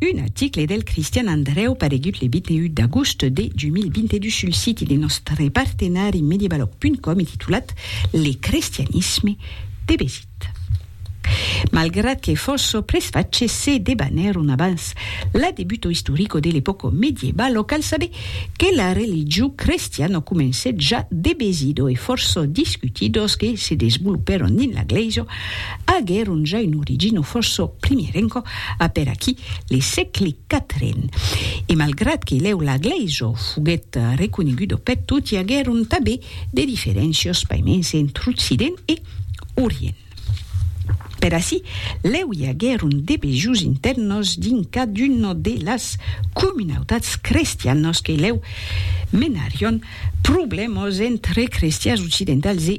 Un article del Cristian Andrèu paregut le 21 d'agost de 2022 sul siti de nòstre partenari Medievalog.com e titulat Le crestianisme de Bézit. Malgrat que fòsso presfach se debanèron abans la debuto istorico de l'epòco medievalo, cal saber que la religiu crestiano comencèt ja de Bézido e fòsso discutidos que se desvolupèron dins la glèisa aguèron ja un origino fòrça primièr encò, apèr aquí le sègle quatren. E malgrat que lèu la glèisa foguèt reconeguda peth tot, i aguèron tanben de diferéncias paiments entre Occident e Orient. Per ací, lèu i aguèron de bejos intèrnes dins caduna de las comunautats crestianas que lèu menarion problèmas entre crestians occidentals e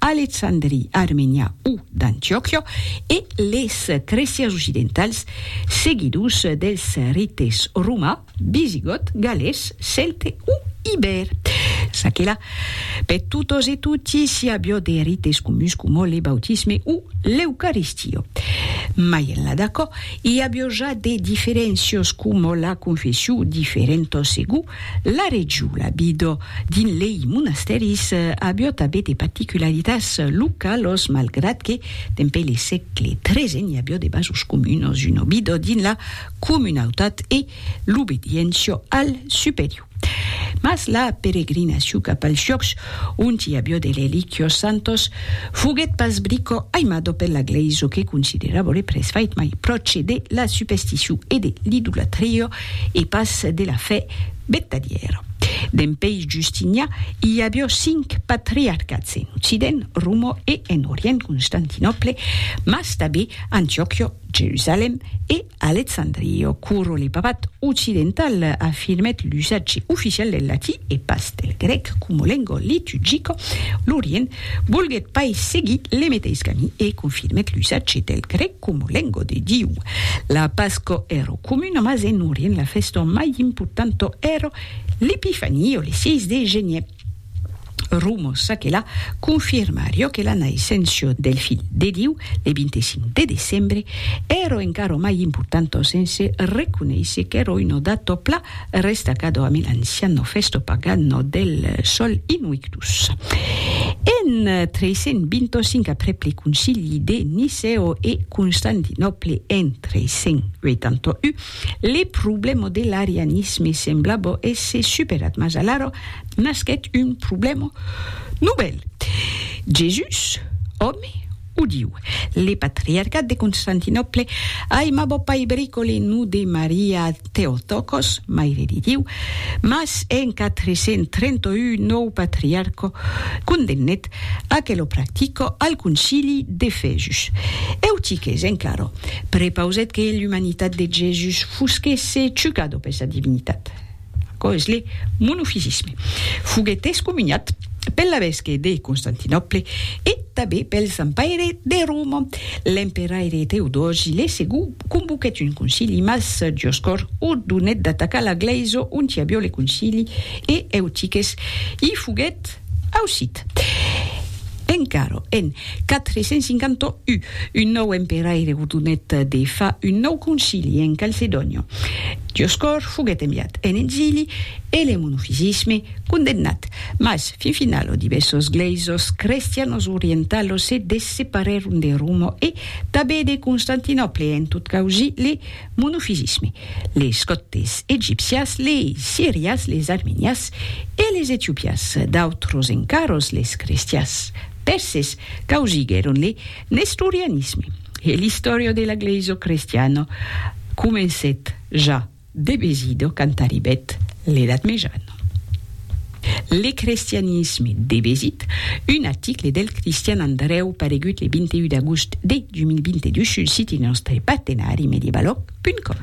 Alexandria, Armenia o d'Antiòquia e les cresias occidentals, seguidors dels rites romà, visigòt, galés, celte o ibèr. Ça que la, per totes e toti s'i aviá de rites comuns coma le bautisme o l'eucaristia. Mai enlà d'aquò, i aviá ja de diferéncias coma la confession, diferentas segur La regiola Bido, dins lei monastèris, avió tabé de particularitats localos malgrat que, dempè le sègle XIII, n'i avió de vasos comunos, un obido dins la comunautat e l'obediéncia al superior. Mas la peregrinacion cap als llocs ont i avió de relíquios santos foguèt pas brico aimado per la Glèisa que considerava le presbite mai pròche de la supesticion e de l'idolatria e pas de la fe betadièra. Dempèi Justinià, i avió cinc patriarcats en Occident, Roma, e en Orient, Constantinòple, mas tanbé Antiòquia, Jerusalèm, e Alexandria, quora le papat occidental afirmèt l'usatge oficial del latí e pas del grèc coma lenga liturgica, l'Orient volguèt pas seguir le meteis camí e confirmèt l'usatge del grèc. Como lengo de Diu. La Pasco ero comuna mas en Orient la festo mai importanto ero l'Epifania o le 6 de genier. Rumo ça que la confirmario que la naissencio del Filh de Diu le 25 de decembre ero encaro mai importanto sense reconeisser qu'ero una dato pla Er restacado a mi l'anciano festo pagano del sol inuictus. En 325 après pli concili de Niceo e Constantinòple en 381, le problemo de l'arianisme semblabo èsser superat mas alara nasquèt un problemo novèl, Jesús, òme O diu, le patriarcat de Constantinòple aimabo pair bricole no de Maria Theotokos, Maire de Diu, mas en 431 nòu patriarco condemnèt a que lo practico al concili d'Efesus. Eutiques, en claro, prepausèt que l'umanitat de Jesus fusquèsse chucado per sa divinitat. Aquò es le monofisisme. Foguèt excomuniat pel lavesque de Constantinòple e tanben pel Zampaire de Roma. L'emperaire Teodosi le Segon convoquèt un concili mas Dioscòr ordonèt d'atacar la glèisa onti avió le concili e Eutiques i foguèt Ausit. Encara en 451, un nòu emperaire gordonèt de far un nòu concili en Calcedònia. Dioscòr foguèt enviat en exili e le monofisisme condemnat, mas fin final los divèssos glèisos crestianos orientalos se desseparèron de Roma e tanben de Constantinòple en tot causir le monofisisme, les còptes egipcias, les sirias, les armenias e les etiopias, d'autros encaròs les crestias pèrses causiguèron le nestorianisme e l'istòria de la glèisa crestiana comencèt ja de Besido quand arribèt l'Edat Mejana. Le crestianisme de Besit, un article del Cristian Andrèu paregut le 21 d'agost de 2022 sul siti nòstre partenari mediebalòg.com.